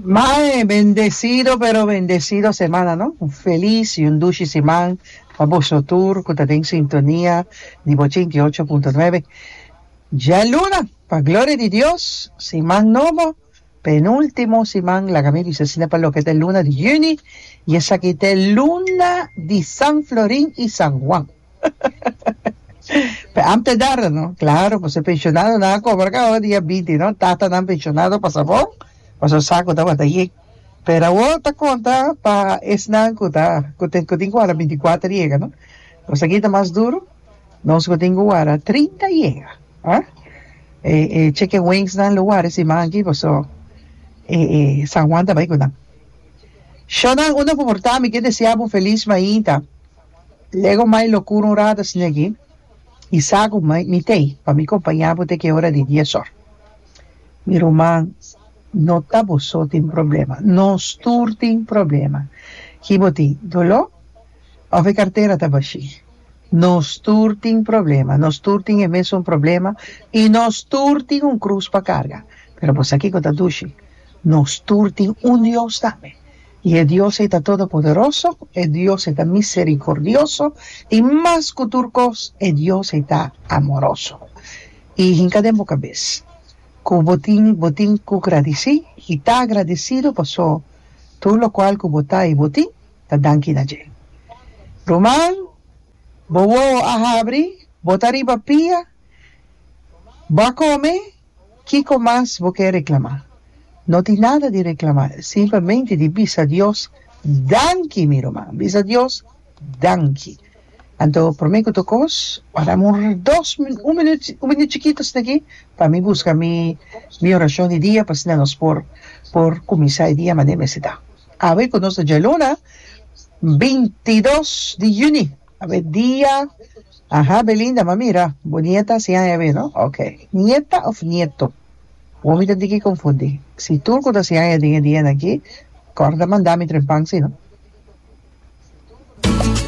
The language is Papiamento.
Mae bendecido pero bendecido semana no. Un feliz y un dushi siman pa boso tur cu ta den sintonia di bo ochenta y ocho punto nuebe. Djaluna pa gloria di Dios siman nobo penultimo siman laga mi bisa asina pa loke ta e luna di juni y esaki ta e luna di San Florin y San Juan. Pe ante dara, no? Claro, pues pensionado na cobra ka o dia 20, no? Tata nan pensionado pa sabon, pa so sa ku tabata ye. Pero awo ta konta pa esnan ku ta ku tin ku tin ku wara 24 yega, no? Pues aki ta mas duro. Nos ku tin ku wara 30 yega, a? E e chicken wings nan lo wari siman aki paso e e San Juan ta bai ku nan. Shon nan unda ku por ta mi ke desea bo feliz mainta. Lego mai lo kuro un rata snegi i sa ku mai mi t'ei pa mi kompañá bo te ki ora di dies òr. Mi ruman, no ta bo so tin problema, nos tur tin problema. Ki bo tin, doló? Òf e kartera ta bashí? Nos tur tin problema, nos tur tin e mesun problema i nos tur tin un krus pa karga. Pero bo sa kiko ta dushi? Nos tur tin un Dios tambe. I e Dios ei ta todopoderoso, e Dios ei ta miserikordioso, i mas ku tur kos, e Dios ei ta amoroso. I hinka den bo kabes ku bo tin bo tin ku gradisí i ta agradesidu paso tur lokual ku bo ta i bo tin, ta danki na dje. Ruman, bo wowo a habri, bo ta riba pia, bo a kome. Kiko mas bo ke reklamá? No tin nada di reklamá, simplemente di bisa Dios danki, mi ruman. Bisa Dios danki. Anto promé ku ta kos, bo a dam un dos minüt, un minüt, un minüt chikito asina aki pa mi buska mi mi orashon di dia pa asina nos por por kuminsá e dia manera mester ta. Awe ku nos ta djaluna bintidos di yüni. Awe dia. Aha Belinda ma mira bo nieta si aña awe no ok. Nieta of nieto Bo mi ta di ki konfundi si tur ku ta si aña den e dianan aki kòrda manda mi trempan si no.